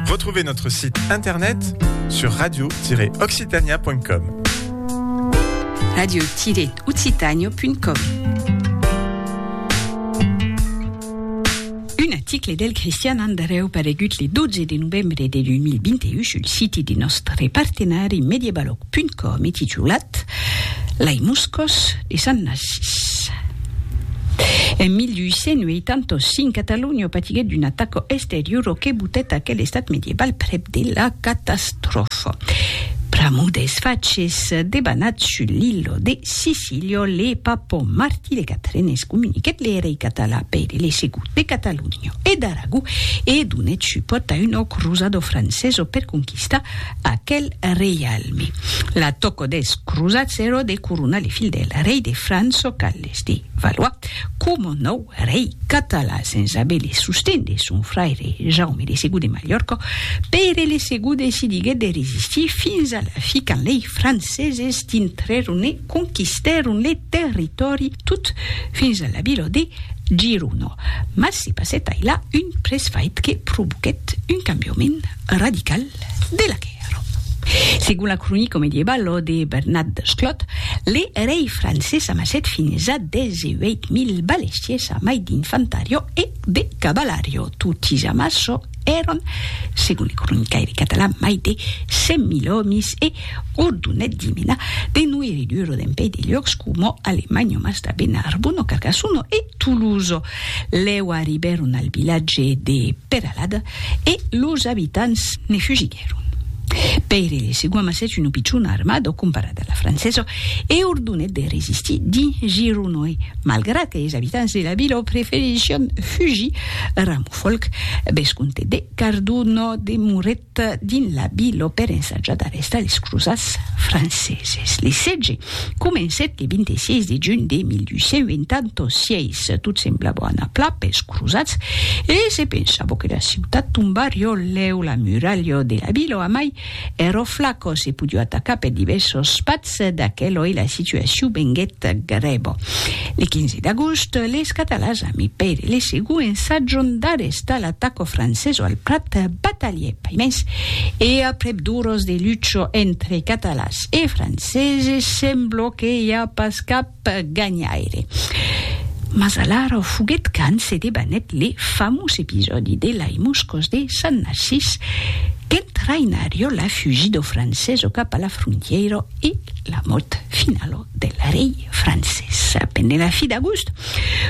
Retrouvez notre site internet sur radio-occitania.com. radio-occitania.com Un article del Christian Andreu paregut le 12 de novembre de 2021 sul site de nostre partenari mediebalog.com e titulat Lai muscos E Sant Narcís. En 1885, Catalonha patiguèt d'una ataca exteriora que botèt aquel estat medieval prèp de la catastròfa. Pr'amor dels faches debanats sus l'illa de Sicília, le papa Martí de Quatren excomuniquèt le rei català Pere le Segon de Catalonha e d'Aragó e donèt supòrt a una crosada francesa per conquistar Aquel reialme. La tòco des crosats ero de coronar le fil del rei de Franço Carles de Valois coma nòu rei català sens aver le sosten de son fraire Jaume de Segur de Malhòrca. Pere le Segur decidiguèt de resistir fins a la fi quand lei franceses dintrèron e conquistèron le territòri tot fins a la vila de Girona. Mas se passèt ailà un presfait que provoquèt un cambiament radical. De la quèrò. Segon la cronica medievalo de Bernat Desclot, le rei Francés amassèt fins a 18 mil balestiers a mai d'infantario e de cavalario. Totis amasso èron, segon le cronicaire catalan, mai de 100 mil òmis e ordonèt dimena de noire duro dempeis de luòcs coma Alemanya, Mastabèn, Arbona, Carcasuno e Toulouse. Lèu arribèron al vilatge de Peralada e los abitants ne fugiguèron. Pèire de Segua amassèt una pichona armada comparada a la francesa e ordonèt de resistir dins Gironòi, malgrat que es abitants de la vila preferission fugir. Ramofòlc, vescomte de Cardona, demorèt dins la Bilo per ensajadar estadis crosats franceses. Le setge comencèt le 26 de junh de 1286. Tot semblava anar plan pels crosats e se pensava que la ciutat tombarió lèu la muralha de la Bilo amai ero flaco se podió atacar per divèrsos patz, Mas d'aqueloi la situacion venguèt grèva. Le 15 d'agost, les Catalans a mi Pere le Segú ensatjon d'arrestar l'ataco franceso al Prat, batalhè paimens e aprèp d'oras de lucha entre Catalans e Franceses, sembla que i a pas cap ganhaire. Mas alara o foguet quand se debanèt le famós episòdi de Lai Moscós de Sant Narcís qu'en traïnarió la fugid'o francés o cap a la frontièira e la mòrt final'o del rei francés. Pendent la fi d'agost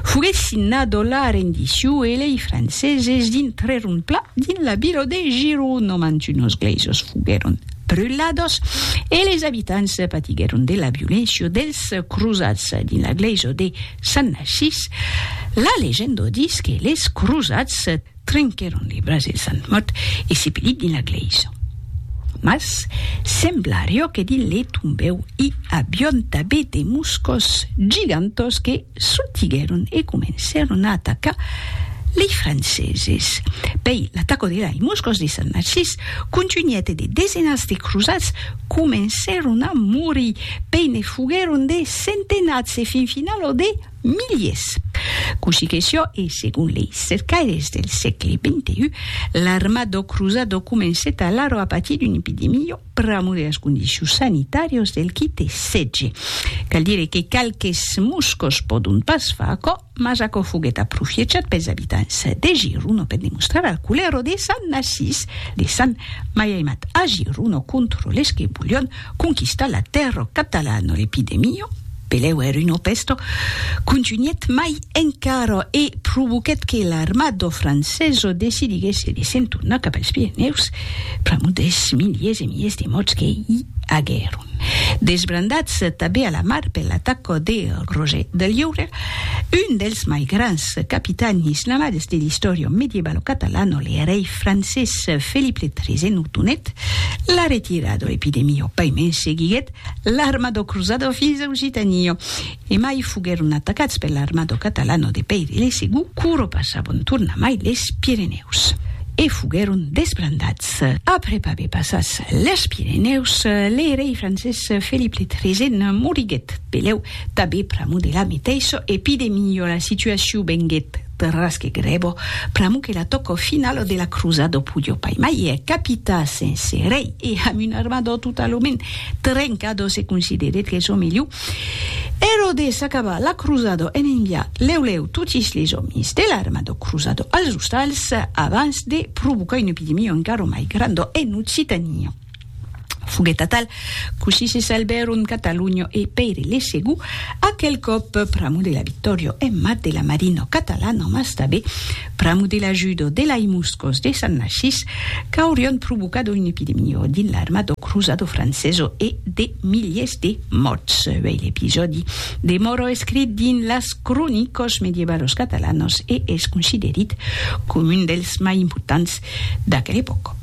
foguet signad'o la rendició e lei franceses dintrèron pla dins la vila de Girona, mantunos gleisos foguèron brulados e les abitants patiguèron de la violéncia dels crosats dins la glèisa de Sant Narcís. La legenda ditz que les crosats trenquèron le braç del Sant mòrt e sepelit dins la glèisa. Mas semblarió que dins le tombèu i avión tabé de moscos gigantós que Sortiguèron e comencèron a atacar lei Franceses. Pei l'ataco de lei Moscòs de Sant Narcís contunhèt e de desenats de crosats comencèron a morir, pei ne foguèron de centenats e fin final ò de miliers. Cossí que sió e segon lei cercaires del sègle xxi, l'arma dò crosat ò comencèt alara a patir d'una epidemia. pr'amor de las condicions sanitàrias del qui te setge. Cal dire que qualques moscos pòdon pas far aquò, mas aquò foguèt aprofiechat pels abitants de Giruno per demostrar al culero de Sant Narcís de Sant Maiaimat a Giruno contra les que volion conquistar la terra catalana, l'epidemia, Peleuer un opèsto contunhèt mai encara e provoquèt que l'armada francesa decidiguèsse de se'n tornar cap als Pirenèus pr'amor dels miliers e miliers de mòrts que i aguèron. Desbrandats tanben a la mar per l'ataca de Roger de Lliure, un dels mai grands capitans islamades de l'istòria medievalo catalana, le rei francés Felip le Tresèn ordonèt la retirada. L'epidemia, paimen, seguiguèt l'armado cruzado fins au Gitanillo, e mai foguèron atacats per l'armado catalano de Pèiri le Segur, quoro passabon tornamai les Pirenèus, e foguèron desbrandats. Après aver passats les Pirenèus, le rei francés Felip le Tresèn moriguèt, pelèu, tanben pr'amor de la meteissa, e pi de milhor la situacion venguèt. Perrasque grebo, pr'amo que la tòco finalo de la crosa do pudjo pai mai e capita sense rei e amb un armador totalament trenca do se considerèt que çò melhor ero de s'acabar la crosa do en enviar lèu lèu totis les òmis de l'arma do crosa do als ostals abans de provocar una epidemia encara mai granda en Occitania. Foguèt atal, cossí se salbèron Cataluño e Pèire le Segú, aquel còp pr'amo de la Victòrio en mat de la Marino Catalano mas tabé pr'amo de l'ajudo de lai Muscos de Sant Narcís qu'aurion provocado un epidemio dins l'armado cruzado franceso e de miliers de mòrts. Uèi l'episòdi demòra escrit dins las cronicos medievalos catalanos e es considerit com un dels mai importants d'aquel epòc.